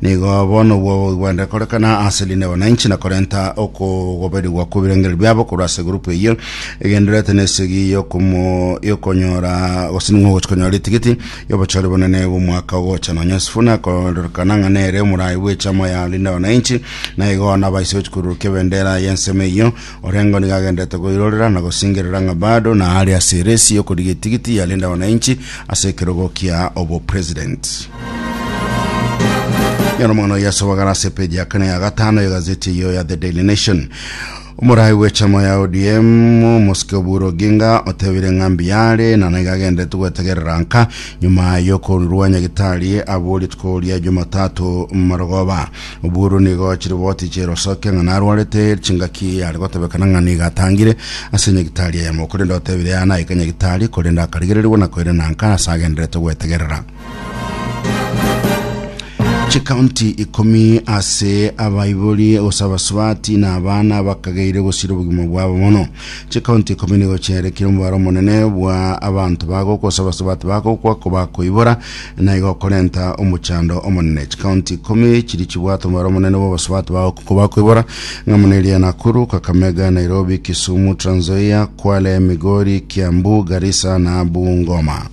Nigo bono obwo bogwende korekana ase rinde wananchi na korenta okogoberigwa kw'ebirengererio biabo korwa ase egurupu eyio egendererete na esegi y'okomo- y'okonyora gose ning'o ogochia konyora ritigiti y'obochore bonene bw'omwaka ogocha nonya Sifuna akoororekana ng'a nere omorai bw'echama ya rinde wananchi na igo nabaise gochia korurukia ebendera y'ensemo eyio Orengo nigo agenderete goirorera na gosingerera ng'a bado naare ase eresi y'okorigia etigiti ya Linda Wananchi ase ekerogo kia obopresident. Nyora omogano oye ase obogare ase epeji ya kane ya gatano y'egazeti eyio ya The Daily Nation. Omorai bw'echama ya ODM omosike Oburu Oginga otebire ng'a mbiyare na naiga agenderete gwetegerera nka nyuma y'okorua Nyagitari abwo rituko ria Jumatatu marogoba. Oburu nigo chiriboti chi'erosoke ng'a narwarete chingaki yare gotebekana ng'a nigo atangire ase nyagitari eyemo, korende otebire yare naike nyagitari, korende akarigererigwa na koirenanka ase agenderete gwetegerera. Chikaunti ikomi ase abaibori gose abasubati na abana bakageire gosira obogima bwabo mono. Chikaunti ikomi nigo chiaerekire omobaro omonene bwa abanto bagokwa gose abasubati bagokwa kobakoibora na igo okorenta omochando omonene. Chikaunti ikomi chiri chibwate omobaro omonene bw'abasubati ba okuko bakoibora, ng'a muna eria Nakuru, Kakamega, Nairobi, Kisumu, Trans Nzoia, Kwale, Migori, Kiambu, Garissa na Bungoma.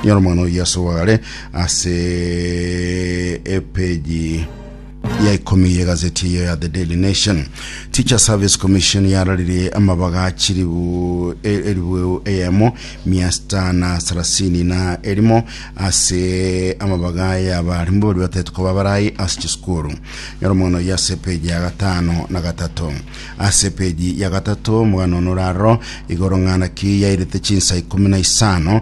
Nyora omwana oyio ase obogare ase epeji ya ikomi y'egaseti eye ya The Daily Nation, Teacher Service Commission yararirie amabaga chiribu e- eribu eyemo mia sita na sarasini na erimo ase amabaga y'abarimbu baria bataete koba abarai ase chisukuru. Nyora omogano oyio ase epeji ya gatano na gatato. Ase epeji ya gatato omogano one oraroro igoro ng'ana ki yairete chinsa ikomi na isano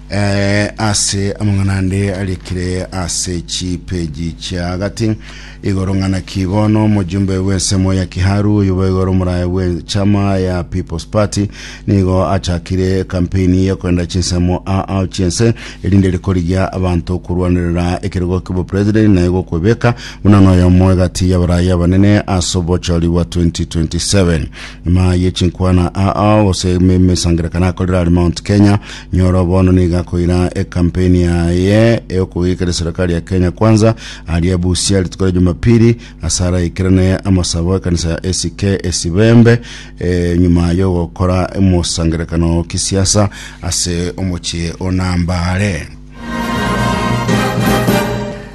Ee, ase amang'ana ande arikire ase chipeji chia agati igoro ng'ana ki bono omojumbe bw'ensemo ya Kiharu oyo boiga ore omorae bw'echama ya People's Party nigo achakire kampeini y'okoenda chinsemo aao chiense erinde rikorigia abanto okorwanerera ekerogo ki'obopresident na egokwebeka buna noyomo egati y'abarai abanene ase obochori bwa 2027 nyuma yechinkwana aao gose emesangerekano akorire are Mount Kenya Nyoro bono nigo akoira ekampeni yaye ey'okogikera serikali ya Kenya Kwanza aria Busia rituko ria Jumapili ase araikerane amasabo ekanisa ya ACK Esibembe eh, nyuma y'ogokora omosangerekano o kisiasa ase omochie o Nambale.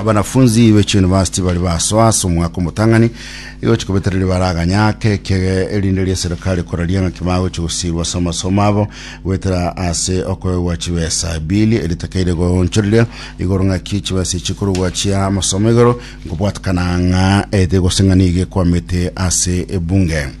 abanafunzi be chiyunivasiti bari basoa ase omwaka omotang'ani egochi kobetera ribaara aganya ake ekege erinde ria serikali koraria ng'aki bagochi gosirwa ase amasomo abo goetera ase okoegwa chibesa ebili eritakeire goonchorire igoro ng'aki chibesa chikorogwa chia amasomo igoro nkobwatakana ng'a ete gose ng'a nigo ekwamete ase ebunge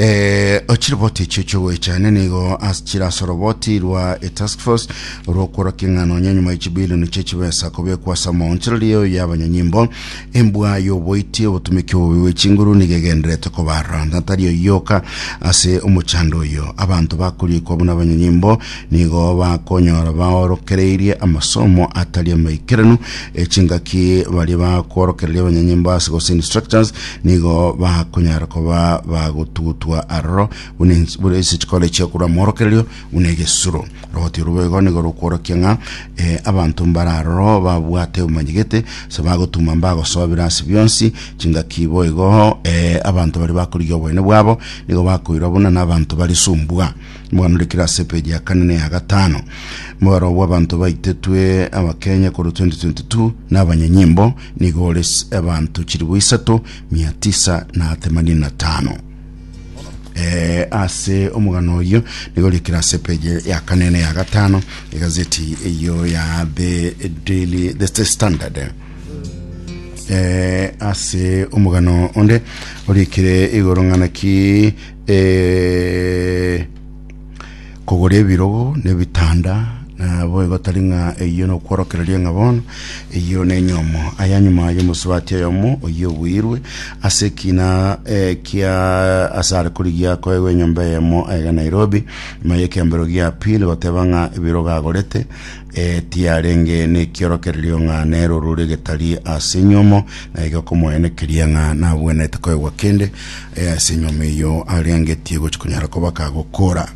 Eh, chiroboti echio chiogoechane nigo as chirasoroboti rwa e task force rwokworokia ng'a nonya nyuma ya chibilioni chia chibesa kobekwa ase amaonchereri eo ya abanyanyimbo embwa y'oboiti obotumiki obobe bwe chinguru nigo egenderete kobarora na tari oyoka ase omochando oyo abanto bakorikwa buna abanyanyimbo nigo bakonyora baorokereirie amasomo atari amaikeranu echingaki baria bakworokereria abanyanyimbo ase gose instructors nigo bakonyara koba bagotugutwa aroro buna ens- buna ase chikore chiakorwa mworokererio buna egesuro rogotio rwo boigo nigo rokworokia ng'a eh, abanto mbare aroro babwate obomanyegete ase bagotuma mbagosobera ase bionsi chingaki boigo eh, abanto baria bakorigia oboene bwabo nigo bakoirwa buna n'abanto bare sumbua omogano ore kere ase epeji ya kane na eya gatano omobaro bw'abanto baitetwe abakenya korwa 2022 na abanyanyimbo Nigo ore abanto chilifu isato mia tisa na themanini na tano. Eh, ase omogano oyo nigo rikira ase peje ya kane na ya gatano egazeti eyo ya the daily the, the standard eh, ase omogano onde orikire igoro ng'ana ki eh, Kogora ebirogo na ebitanda, naboigo tari ng'a eyio nokworokereria ng'a bono eyio nenyomo. Aya nyuma y'omosubati oyomo oyio obuirwe ase ekina ekia asare korigia koegwa enyomba eyemo aiga Nairobi, nyuma y'ekiambero gia pili goteba ng'a ebirogo agorete Ee, tiarenge nekiorokererio ng'a nero rore getari ase enyomo, na iga komoenekeria ng'a nabwenerete koegwa kende ee, ase enyomo eyio arengetie gochia konyara kobaka gokora.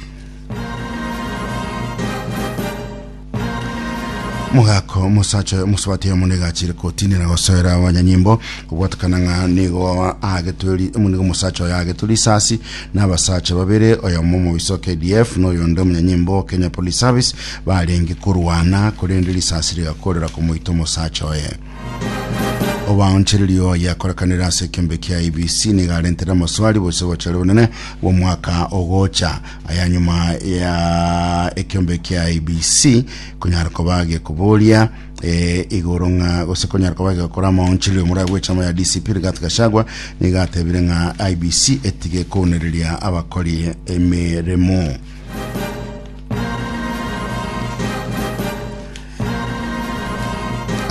Mogako omosacha oyo omosabati oyo mone gachire kotinera gosoera abanyanyimbo kobwatekana ng'a nigo agetwe ri- nigo omosacha oyo agetwe risasi na abasacha babere oyomo omobisa o KDF na oyonde omonyanyimbo o Kenya Police Service Barenge korwana, korende risasi rigakoorera komoita omosacha oye. Obaonchereria oye akorekanire ase ekeombe kia IEBC nigo arentere amoswari bose obochare obonene bw'omwaka ogocha. Aya nyuma ya ekeombe kia IEBC konyara koba gekoboria eh, igoro ng'a gose konyara koba gegokora amaonchererio omorwai bw'echama ya DCP Rigathi Gachagua nigo atebire ng'a IEBC etige kounereria abakori emeremo.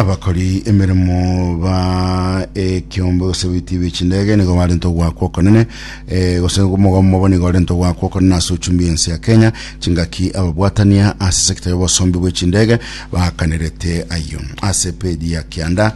abakori emeremo ba ekiombe gose bitibi chindege nigo barenta ogwakwa okonene eh, gose omogomo obo nigo orenta ogwakwa okonene ase ochumbi ense ya kenya chingaki ababwatania ase sekta y'obosombi bw'echindege bakanerete ayio ase pedi ya kianda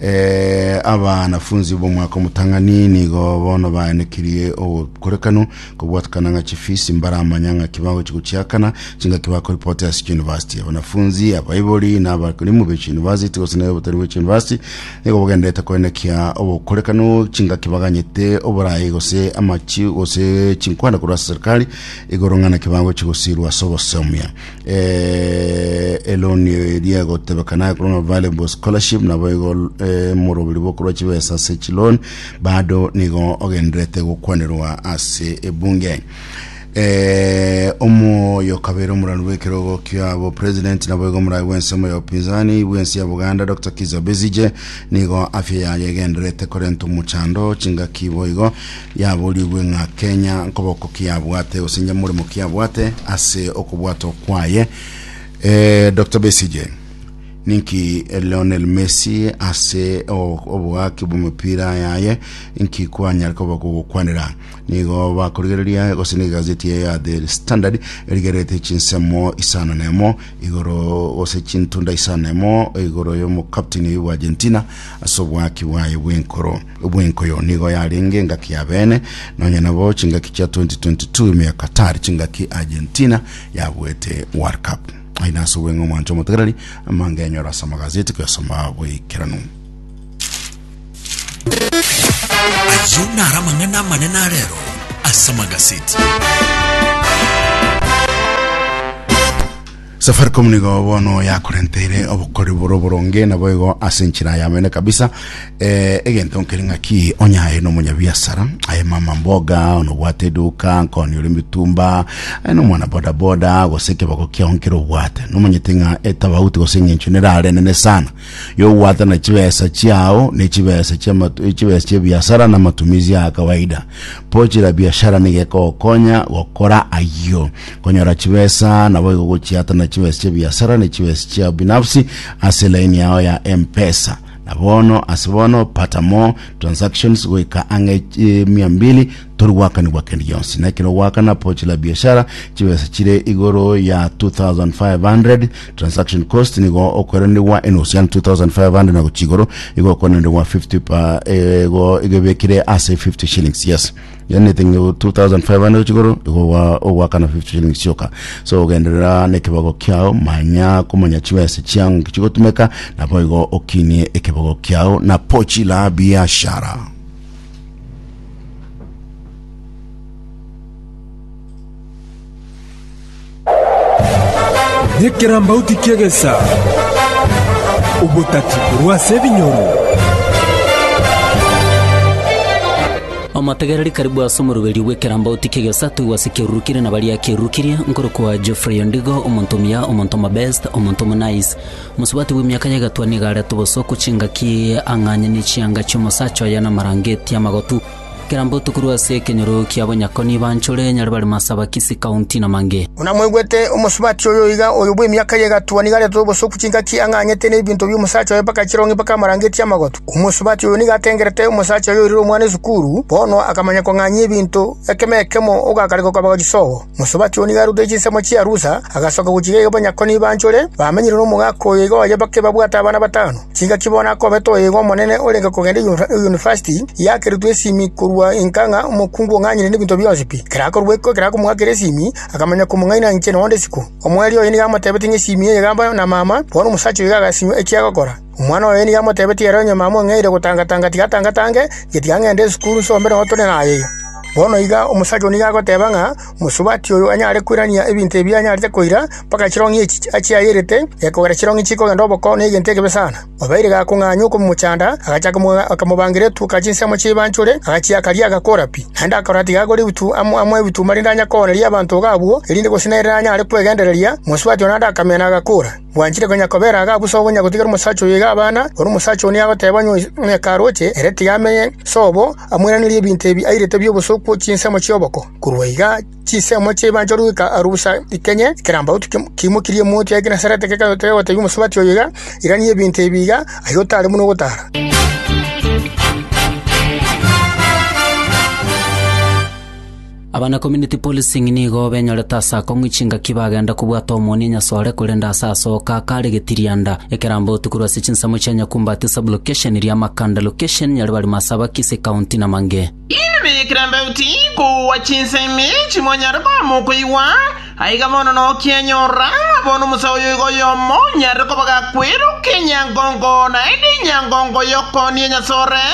Ee, abanafunsi b'omwaka omotang'ani nigo bono baenekirie obokorekanu kobwatikana ng'a chifisi mbaramanya ng'aki bagochi gochiakana, chingaki bakoripoti ase chiyunivasiti. Abanafunsi, abaibori, na abakorimu be chiyunivasiti gose na obotari bwe chiyunivasiti nigo bagendererete koenekia obokorekanu chingaki baganyete oborai gose amachi gose chinkwana korwa ase serikali igoro ng'a naki bagochi gosirwa ase obosomia. eh, eloni eria egotebeka naye korwa ng'a valuable scholarship nabo igo eh, morobiri bokorwa chibesa ase chiloni bado nigo ogenderete gokwanerwa ase ebunge eh, omoyo kabere omorani bw'ekerogo kiabo president nabo igo omorani bw'ensemo ya opinzani bw'ensi ya buganda dr kiza bezije nigo afya yaye egenderete korenta omochando chingaki boigo Yaborigwe ng'a kenya nkoboko kiabwate gose nyamoremo kiabwate ase okobwatwa kwaye. Eh, Dr. Besigye, ninki Lionel Messi ase o- obogaki bw'omopira yaye nki kwanyare koba kogokwanera nigo bakorigereria gose n'egazeti eye ya The Standard erigerete chinsemo isano na emo igoro gose chintunda isano na emo igoro y'omokapteni oyo bwa Argentina ase obwaki bwaye bw'enkoro Obwenko oyo nigo yarenge engaki ya beene, nonya nabo chingaki chia 2022 ime ya Qatar, chingaki Argentina yabuete World Cup. Aye nase obweng'e omwancha omotegereri amange anyore ase amagazeti koyasoma bweikeranu. Ayio naro amang'ana amanene a rero ase amagazeti. Safaricom nigo bono yakorenteire obokori boro boronge naboigo ase enchera yamene kabisa eh, egento nkeri ng'aki onyaye na omonyabiasara aye mama mboga onobwate eduka nkoni ore mitumba aye na omwana bodaboda gose ekeboko kiao nkere obwate nomanyete ng'a etabauti gose eng'encho nerare nene sana yobwate na chibesa chiao ne chibesa chiamatu- chibesa chia biasara na matumizi ya kawaida Pochera biashara nigekogokonya gokora ayio. Konyora chibesa naboigo gochiatana chibesa chia biasara ne chibesa chiao binafsi ase line yao ya M-Pesa. Na bono ase bono pata more transactions goika ang'e eh, mia mbili tori gwakanigwa kende gionsi. Na ekero ogwakana pochera biashara chibesa chire igoro ya 2500 Transaction cost nigo okoeranigwa enusu yani 2500 na gochia igoro igo okoeranigwa 50 pa eh, igo igo ebekire ase 50 shillings yes yani thing 2500 gochia igoro igo ogwa- ogwakana 50 shillings sioka so ogenderera nekebago kiao manya komanya chibese chiao ng'iki chigotumeka nabo igo okinie ekebago kiao na pochi la biashara Nekerambauti ki'egesa, obotati korwa ase ebinyoro. Omotegereri karibu ase omoruberio bw'ekerambauti ki'egesa toigwe ase ekeruru kiria na baria ekeruru kiria, nkorokwa Geoffrey Ondigo, omonto omuya, omonto omobest, omonto omonice. Mosubati bw'emiaka ya egetwa nigo arete obosooku chingaki ang'anyani chianga chi'omosacha oye na amarangeeti amagotu. Kera mbotuko rwa ase ekenyoro ki'abanyakoni banchore nyare bare Masabakisi County na Mange. Buna mwaigwete, omosubati oyo iga oyo bw'emiaka eye egatwa nigo arete obosoku chingaki ang'ang'ete n'ebinto bi'omosacha oye mpaka chirong'i mpaka amarangetie amagotu. Omosubati oyo nigo atengerete omosacha oyo oirire omwana esukuru, bono akamanya kong'anyia ebinto, ekemo ekemo ogakare gokaba gochia sobo. Mosubati oo nigo arutire chinsemo chia rusa, agasoka gochika iga banyakoni baanchore, bamenyire nomogaka oyo iga oye bake babwate abana batano. Chingaki bono akobeta oyo iga omonene orenge kogenda eyunivasiti, yakeretwe esimi korwa inka ng'a omokungu ong'anyire nebinto bionsi pi. Ekero akorua iko ekero akomoakera esimi, akamanya komong'aina inche nonde isiko. Omweeri oye nigo amotebetie ng'a esimi eye egambwa na mama, bono omosacha oyo iga agasinywa eki agokora. Omwana oye nigo amotebetie ere onye mama ong'eire gotanga-tanga tiga atanga-tange, getiga ng'ende esukuru nse ombe nabo tore naye iga. Bono iga omosacha oyio nigo agoteba ng'a omosubati oyo anyare koirania ebinto ebi anyarete koira, mpaka chirong'i echi achiayerete, gekogera chirong'i chikogenda oboko na egento ekebe sana. Obeire gakong'anywa okomochanda, agacha akamobangira etuka chinse amo chi'ebanchore, agachiaka riaga akora pi. Naende akarora tiga agore ebitu amo ebituma rinde anyakoooneria abanto iga abwo, erinde gose nere nanyare kwegendereria, omosubati oyo naende akamenya na agakora. Bwanchire konya kobera iga busa ogonya gotigera omosacha oyo iga abana, ore omosacha oo nigo agoteba onye ng'a ekaroche, ere tiga amenye sobo, amoiranerie ebinto ebi airete bi'obosooku chinsemo chi'oboko. Korwa iga chinsemo chi'ebanchoro goika aruu busa ikenye ekerambauti kiimokirie emoti ya Genesarete kegotebia omosubati oyo iga, Irania ebinto ebi iga, aye otaare buna ogotaara. Aba na community policing nigo benyorete ase akong'u chingaki bagenda kobwata omoonia nyasore korende ase asoka akare getirianda. Ekerambe otuku rwase chinsemo chia Nyakumba ati sub-location ria Makanda location Nyaribarima ase Abakisi county Namange. Inwe bekerambe oti kogwa chinsemi echi mwanyare koba mokoigwa, aiga bono nokia nyora bono omosae oyo iga oyomo onyarire koba gakwera okenyangongo naende enyangongo y'okoonia nyasore,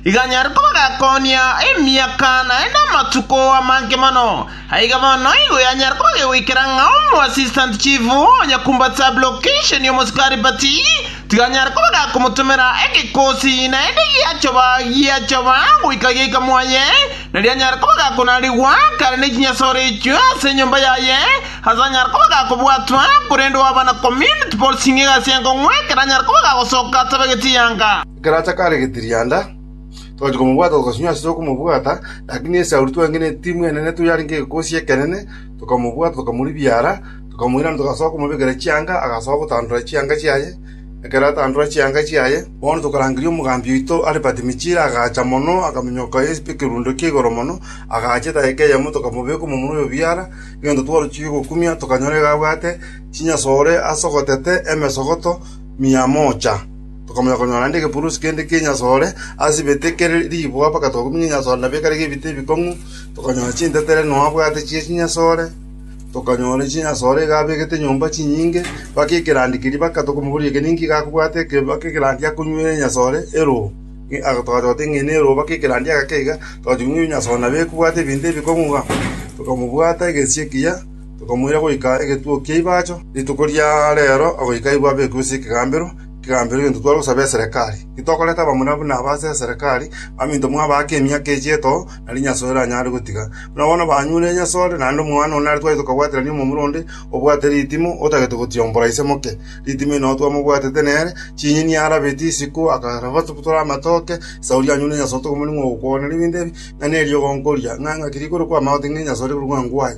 Iganyare koba gekoonia emiaka naende amatuko amange mono. Aiga bono igo yanyare koba gegoikera ng'a omoasisitant chief o nyakumba Sablokishon omosikari Pati tiganyare koba gakomotomera egekosi naende giachoba giachoba goika giaika mwaye, na rianyare koba gakonarigwa kare ne chinyasore echio ase enyomba yaye, ase anyare koba gakobwatwa, korende oaba na community policing egasi enkong'u ekero anyare koba gagosoka atabegeti yanga. Ekero acha kare getirianda, togacha komobwata togasinywa ase okomobwata, lakini esauri twangeneti timwenerete, tari yarenge egekosi ekenene, tokamobwata, tokamoribia ara, tokamoirana, togasoa komobekera chianga, agasoa gotandora chianga chiaye. Ekero atandora chianga chiaye, bono tokarangeria omogambi oito are Pati-Michila, agacha mono, akaminyoka ase ekerundo kia igoro mono, agacha edaika eyemo, tokamobeka omomura oyo biara, egento twaruchirie gokumia, tokanyora iga abwate chinyasore ase ogotete emesogoto mia moocha. Tokamanya konyora naende egepurusi kende ki'enyasore asibete kere riibwa mpaka togakumia enyasore na bikare gebita ebikong'u, tokanyora chintetere nonya abwate chie chinyasore, tokanyora chinyasore iga abegete nyomba chinyinge, mpaka ekerandi keria mpaka tokomoboria eke ninki iga akobwate eke mpaka ekerandi akonywera enyasore eroo. Ng'a aka togacha goteba ng'a eye neroo mpaka ekerandi agaka iga, togacha konywa enyasore nabo ekobwata ebinto ebikong'u igaa. Tokamobwata egesie ekiya, tokamoira goika egetuo kia Ibacho, rituko ria reero, goika aye bwabekwe ase ekegambero, Kegambero egento twagosaba eserekari. Titokoreta abamura buna aba ase eserekari, baminto mwabaake emiaka echiaito, na rinyasoe ranyare gotiga. Buna bono banyure enyasore, naende omwana one are twagete kobwaterania omomura onde obwate ritimo, otagete gotiombora ise moke. Ritimo inwe twamobwatete nere, chinyeni arabeti isiko, akabatora amatoke, esauri anyure enyasoto, omorimo ogokwana ribindi ebi, ng'a neriogo nkoria, ng'a ng'aki rigoro kwamagote ng'a enyasore rigoro ng'a ngwae.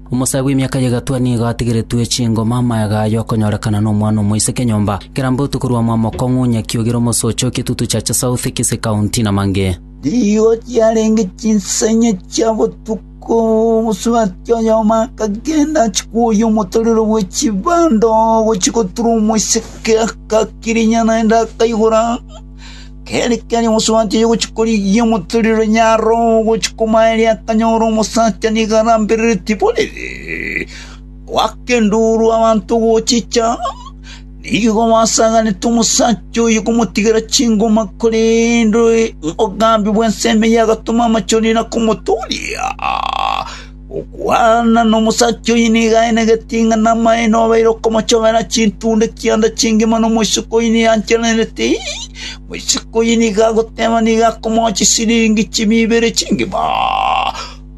Omosae bw'emiaka y'egatwa nigo atigeretwe chingoma amayaga aye okonyorekana nomwana omoiseke nyomba, kera mbautu korwa omwamokong'u, Nyakiogire, Omosoche o Kitutu Chacha South, Kisii County, na mang'e. Nigo chiarenge chinsanya chia botuko, omosubati oyomo akagenda achikuoyia omotorero bwe chibando, gochia gotura omoiseke, agakirinya naende akaigora. Kere keria omosuba achia gochia korigia omotorero ore nyaro ogochia komaeria akanyora omosacha nigo arambereretie borere. Goaka enduru abanto ogochicha, nigo basaganete omosacha oyo komotigera chingoma, korende obogambi bw'ensemo eye agatoma amachoni na komotooria. “Okwana nomosacha oyo nigo aenegetie ng'a namaene obeire okomochobera chintunda chi'onde chingima nomoiseke oyio nigo achenerete. Moiseke oyio nigo agoteeba nigo akomoa chisiringi chimia ibere chingima.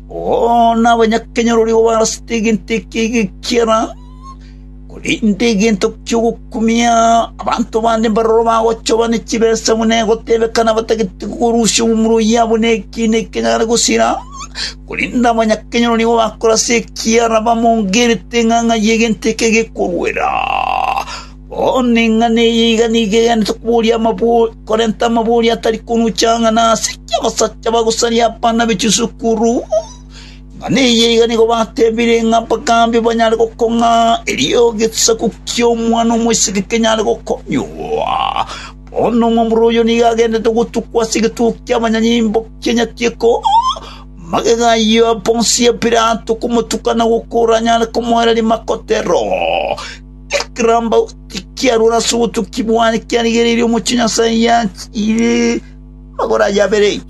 Oo, nabanyakenyoro rigo barasete egento ekiya egekiera! Korende egento ki'ogokumia abanto bande mbaroro bagochoba ne chibesa buna egotebeka nabatagete korusia omomura oyabo nekiina eketanyare gosira, korende abanyakenyoro nigo bakore ase ekiara bamongerete ng'a ng'ai egento eke gekoruera. Bono eng'ana eye iga nigo egenderete koboria amabori korenta amabori atari konucha ang'ana ase eki'abasacha bagosaria abana be chisukuru. Ng'a neyio iga nigo batebire ng'a mpaka mbe banyare gokong'a, erio egesaku ki'Omwana-o-moiseke kenyare gokonyunywa. Bono omwabure oyio nigo agendete ogotukwa ase egetugo ki'abanyanyimbo ki'enyatieko, magega ayio a bonsi a Pilato komotuka na gokora anyare komoereria makotero. Ekerambau tikiarure ase obotuki bwaye kiarigereirie omochie Nyasae yaye. Amagoro aye abere.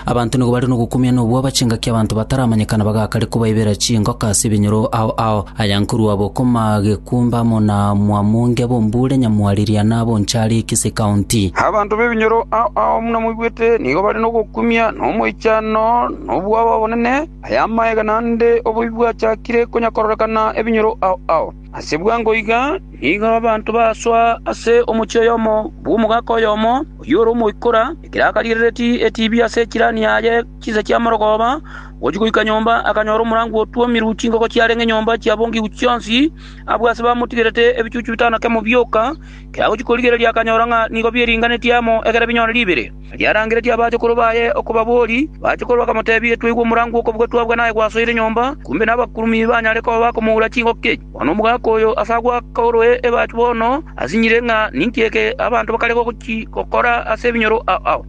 Abanto nigo bare nogokumia na obwoba chingaki abanto bataramanyekana bagaaka are kobaibera chingoka ase ebinyoro ao ao, aya nkorwa bokoma gekumba amo na mwamonge bombure nyamwariria na bonchari ekese ekaonti. Abanto b'ebinyoro ao ao buna moigwete nigo bare nogokumia na omoichano na obwoba obonene, aya amaegena ande oboibi bwachakire konyakororekana ebinyoro ao ao. Ase bwango iga nigo abanto basoa ase omochie oyomo bw'omogaka oyomo, oyio ore omoikora, ekero akarigereretie etiibi ase echirani yaye chinsa chia morogooba, ogochia goika nyomba akanyora omorango otwomirwe chingoko chiarenge nyomba chiabongigwe chionsi, abwo ase bamotigerete ebichuchu bitano kemo bioka, ekero agochia korigereria akanyora ng'a nigo bieringaneti amo ekero binyore ribere. Erio arangeretie abachukuru baye okobabori, bachukuru bakamoteebia, Twaigwa omorango bw'okobugwa twabua naye gwasoire nyomba, kumbe nabakurumi banyare koba bakomoura chingoki. Bono omogaka oyo ase agwo akaoroe ebachu bono asinyire ng'a ninki eke abanto bakare gochia gokora ase ebinyoro ao.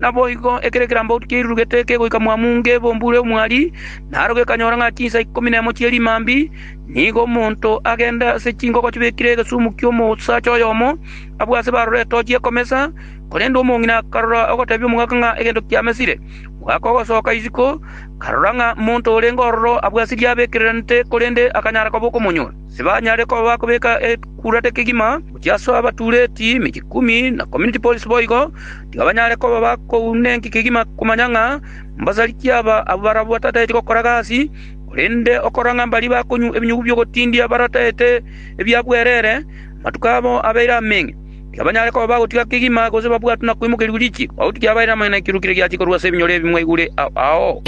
Naboigo ekero ekerambaotu kiairurugete kegoika mwamu nge bombure omwari, naro gekanyora ng'a chinsa ikomi nemo chie rimambi, nigo omonto agende ase chingoko chibekire egesumu ki'omosacha oyomo, abwe ase barore etochi ekomesa, Korende omong'ina akarora ogotebia omogaka ng'a egento kiamesire. Omogaka ogosoka isiko, akarora ng'a monto orenge ororo abwasirie abekereranete, korende akanyara koba okomonyora. Tibanyare koba bakobeka ekurate kegima, gochia ase abatureti emechie ikomi na community police boigo, tiga banyare koba bakouna enki kegima komanya ng'a mbasariki aba abwo barabwo batataeti gokora gasi, korende okora ng'a mbaria bakonywa ebinyugu bi'ogotindia barataete ebiabwerere, amatuko abo abeire amenge. Tibanyare koba bagotiga kegima gose babwate na kwimokeria riichi, obotuki yabaeire amang'ana 'ekero kire giachia korwa ase ebinyoro ebi mwaigure ao.’”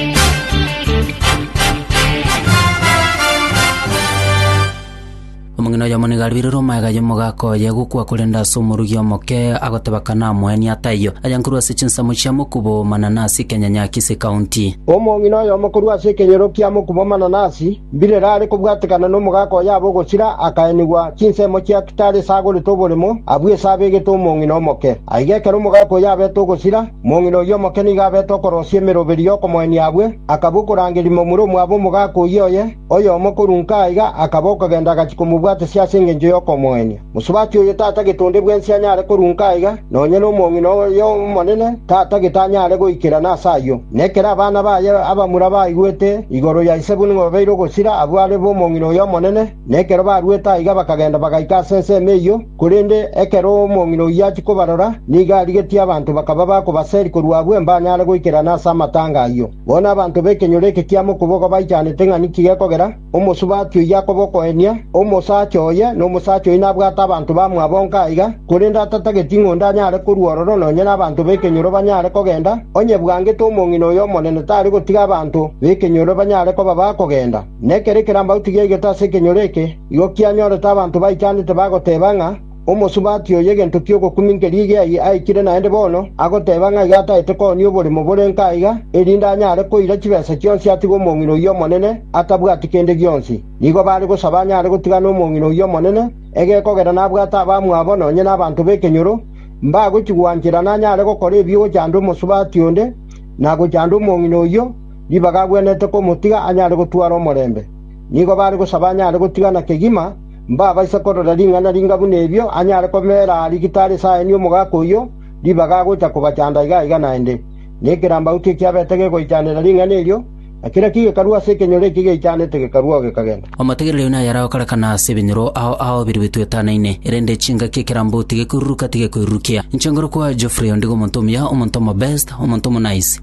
Omong'ina oyomo nigo aribirwe magega y'omogaka oye gokwa korende ase omorugi omoke, agoteba kanamoenie aa taiyo, aye nkorwa ase chinsemo chia mokubo o mananasi Kenyanyakisi County. Omong'ina oyomo korwa ase ekenyoro kia mokubo o mananasi Mbirere are kobwatekana nomogaaka oye abe ogosira, akaenigwa chinsemo chia kitari esagorete oboremo, abue ase abegete omong'ina omoke. Aiga ekero omogaaka oye abete ogosira, mong'ina oyio omoke nigo abete okorosia emeroberi y'okomoenia abue, akaba okorangeria momura omwabo omogaaka oyio oye, oyomo korwa nka aiga akaba okogenda agachia komobwatesia ase engencho y'okomoenia. Mosubati oyo tata getonde bwensi anyare korunka aiga, nonya nomong'ina oye omonene tata gete anyare goikerana ase ayio. Na ekero abana baye abamura baigwete igoro ya ise buna babeire ogosira abwo are b'omong'ina oye omonene, na ekero baruete aiga bakagenda bagaika ase ensemo eyio, korende ekero omong'ina oyio achia kobarora, nigo arigetie abanto bakaba bakobaseri korwa abwo mbanyare goikerana ase amatanga ayio. Bono abanto b'ekenyoro eke kiamo okobogwa baichanete ng'a ninki gekogera, Omosubati oyio akoba okoenia, omosacha oye, na omosacha oyio nabwate abanto bamwabo onka aiga, korende atatageti ng'a onde anyare korua ororo nonya nabanto b'ekenyoro banyare kogenda, onye bwangete omong'ina oyo omonene tari gotiga abanto b'ekenyoro banyare koba bakogenda. Nekero ekerambagu tigiaigete ase ekenyoro eke, igo kianyorete abanto baichanete bagoteba ng'a, Omosubati oyo egento ki'ogokuminkeria egeai aikire naende bono, agoteeba ng'a iga ataete koonia oboremo bore nka iga, erinde anyare koira chibesa chionsi atige omong'ina oyio omonene atabwati kende gionsi. Nigo baare gosaba anyare gotigana omong'ina oyio omonene, egekogera nabwate abamwabo nonye nabanto b'ekenyoro, mbagochi-gwancherana anyare gokora ebibe gochanda omosubati onde, na gochanda omong'ina oyio, ribaga agwenerete komotiga anyare gotwara omorembe. Nigo baare gosaba anyare gotigana kegima, mbabaisa korora ring'ana ringa buna erio, anyare komeera rigita are esaani omogaka oyio, ribaga agocha kobachanda iga iga naende. Na ekerambauti ekiabete gegoichanera ring'ana erio, na kera kigekarua ase ekenyoro eki geichanete gekarua oo gekagenda. Omotegereri oyio naye aragokorekana ase ebinyoro ao ao birubetwe etanaine, erende chingaki ekerambauti gekoiruruka tigekoirurukia. Inche ngorokwa Geoffrey ondigo omonto omuya, omonto omobest, omonto omonice.